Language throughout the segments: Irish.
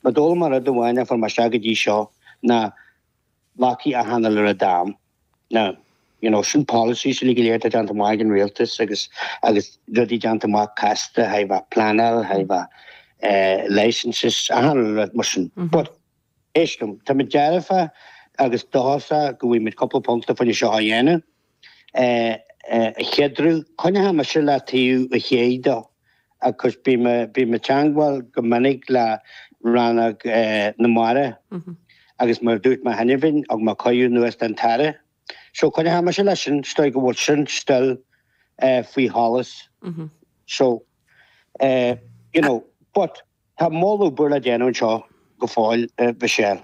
Bhuel is dóigh mar rud amháin a fuair mé isteach go dtí seo ná bacaí pleanáil ar an dam. Now, you know, sin policies uilig go léir atá déanta amach ag an rialtas agus agus rudaí déanta amach casta ó thaobh pleanáil, ó thaobh eh, licences, pleanáil nó rud mar sin. But, is cinnte tá muid dearfa agus dóchasach go bhfuighmid cúpla punt fá choinne seo a dhéanamh. a cheadú. Coinneochaidh mise le taobh an chéid dó agus bím, bím i dteagmháil go minic le Rannóg na Mara agus mar a dúirt mé cheana bhí muid ag iarraidh anuas an tAire so coinneochaidh mise leis sin is dóigh go bhfuil sin still faoi sheol so you know but. Tá moll obair le déanamh anseo go fóill, a Mhichelle.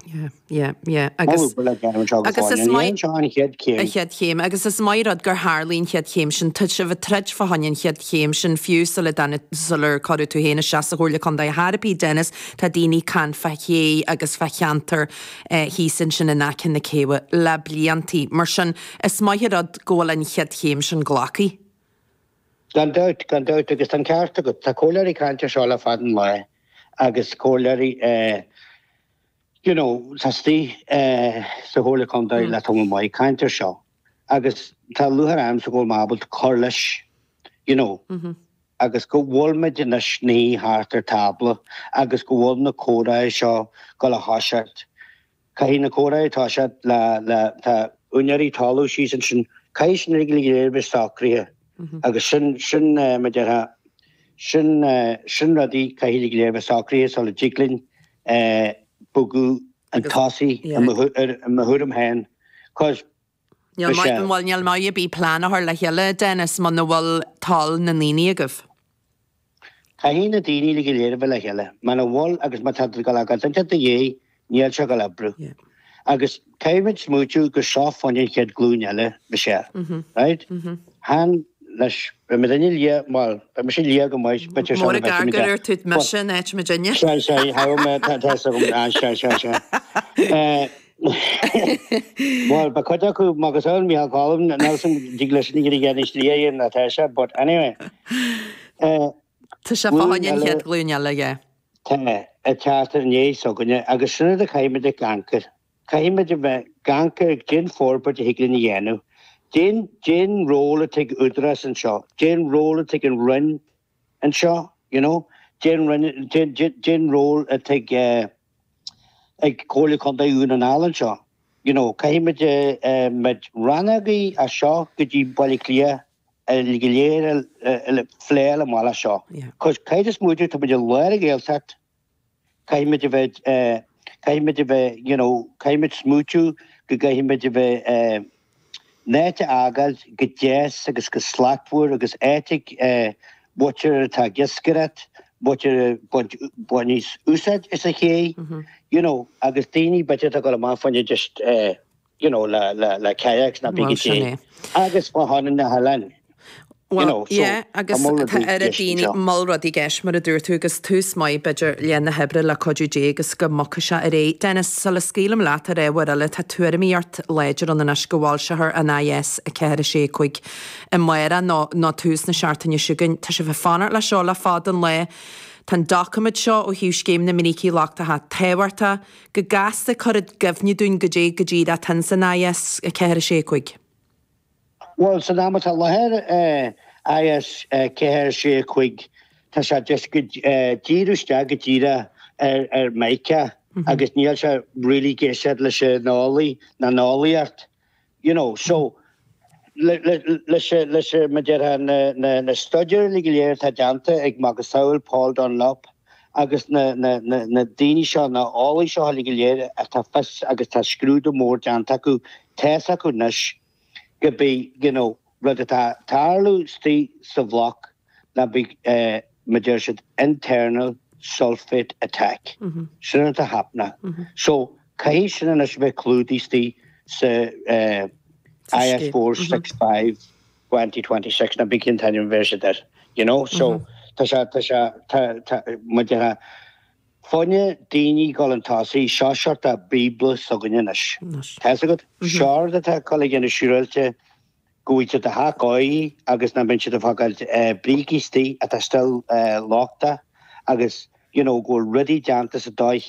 Moll obair le déanamh anseo go fóill. An é anseo an chéad chéim? An chéad chéim. Agus is maith rud gur tharlaigh an chéad chéim sin. Tá sibh ag troid fá choinne an chéad chéim sin fiú sular cuireadh tú féin isteach sa Chomhairle Contae. Tharla, a Denis, tá daoine ag caint fá ché agus fá cheantar thíos ansin in aice na céibhe le bliantaí. Mar sin, is maith rud go bhfuil an chéad chéim sin glactha. Gan dabht, gan dabht, agus tá an ceart agat, tá comhairleoirí caint ar seo le fada an lae agus comhairleoirí eh. you know, tá istigh eh. sa Chomhairle Contae le tamall maith caint ar seo agus tá lúcháir ormsa go bhfuil mé ábalta cur leis you know agus go bhfuil muid inár suí thart ar tábla agus go bhfuil na comhráití seo ag gabháil a thoiseacht Caithfidh na comhrá atá siad le, le, tá úinéirí talaimh thíos ansin, caithfidh sin uilig go léir a bheith socraithe agus sin, sin mar a déarfá, sin, sin rudaí a chaithfidh uilig go léir a bheith socraithe sula dtig linn bogadh chun tosaigh, i mo thuairim féin, cause. Bhuel níl maith ar bith plean a chur le chéile, a Denis, muna bhfuil toil na ndaoine agaibh. Caithfidh na daoine uilig go léir a bheith le chéile. Muna bhfuil agus má tá droch-bhlas agat i dtús an lae, níl sé ag gabháil a oibriú. Agus caithfimid smaoitiú go bhfuil seo fá choinne an chéad ghlúin eile, Michelle. Right? Chan leis muidinne, beidh muidinne liath, bhuel, beidh mise liath go maith, beidh tú sean, a bheidh tú mín. Mura gcairrgearar tú mise in áit mo dhuine. Sea, sea, tharraing mé an t-aos agam. Sea, sea, sea. Bhuel, ba chuid acu, macasamhail Micheál Choilm Nelson, dtig leis anois slí a dhéanamh le toiseacht, but anyway. Tá sé fá choinne an chéad ghlúin eile, yeah. Tá, ag teacht inár ndiaidh s'againne agus sin rud a chaithfimid amharc air. Caithfimid a bheith ag amharc air goidé an fhorbairt a thig linn a dhéanamh. Goidé, goidé an ról atá ag Údarás anseo? Goidé an ról atá ag an Roinn anseo, you know? Goidé, goidé, goidé an ról atá ag. ag Comhairle Contae Dhún na nGall anseo, you know, caithfidh muid rannógaí as seo go dtí Baile Átha Cliath go léir a phlé le mala seo. 'Cause caithfidh tú smaoitiú tá muid i lár an Ghaeltacht, caithfidh muid a bheith, caithfidh muid a bheith, you know, caithfidh muid smaoitiú go gcaithfidh muid a bheith n-áit a fhágáilt go deas agus go slachtmhar agus áit ag muintir atá ag iascaireacht, muintir ag baint úsáid as an chéidh, you know, agus daoine b'fhéidir atá ag dul amach fá choinne just, you know, le kayaks, nó cibé goidé, agus amach chuig na hoileáin. Bhuel, yeah, agus tá oiread daoine, moll rudaí i gceist, mar a dúirt tú, agus tús maith, b'fhéidir, leath na hoibre le cuidiú Dé agus go mbogfaidh sé ar aghaidh. Dennis, sula scaoilim leat, ar ábhar eile, tá tuairimíocht láidir ann anois go bhfoilseofar an IS4, 6, 5 amárach nó tús na seachtaine seo chugainn. Tá sibh ag fanacht le seo le fada an lá. Tá an doiciméad seo ó thaobh scéim na mbrící lochtacha, tábhachtach go gasta cuir i gcuimhne dúinn goidé go díreach atá san IS4, 6, 5. Bhuel, san am atá i láthair, IS 4, 6, 5, tá sé just ag díriú isteach go díreach ar mica agus níl sé really ag éisteacht leis an eolaí ná an eolaíocht, you know, so leis an, mar a déarfá, na stuidéir uilig go léir atá déanta ag macasamhail Paul Dunlop, Agus na daoine seo, na eolaigh seo uilig go léir atá fios agus tá scrúdú mór déanta acu, tá's acu anois gurb é, you know, rud atá ag tarlú istigh sa bhloc ná cibé mar a deir siad internal sulphate attack. Sin rud atá happening. So caithfidh sin anois bheith clúdaithe istigh sa IS-465. 2026 nó cibé cén t-ainm a bheir siad air you know so tá sé tá sé tábhachtach fá choinne daoine dhul chun tosaigh seo sort an bíobla s'againne anois tá's agat sort atá ag dul ag déanamh siúráilte go bhfuil siad do theach OK agus nach bíonn siad ag fágáilt brící istigh atá still lochtach agus you know go bhfuil rudaí déanta sa dóigh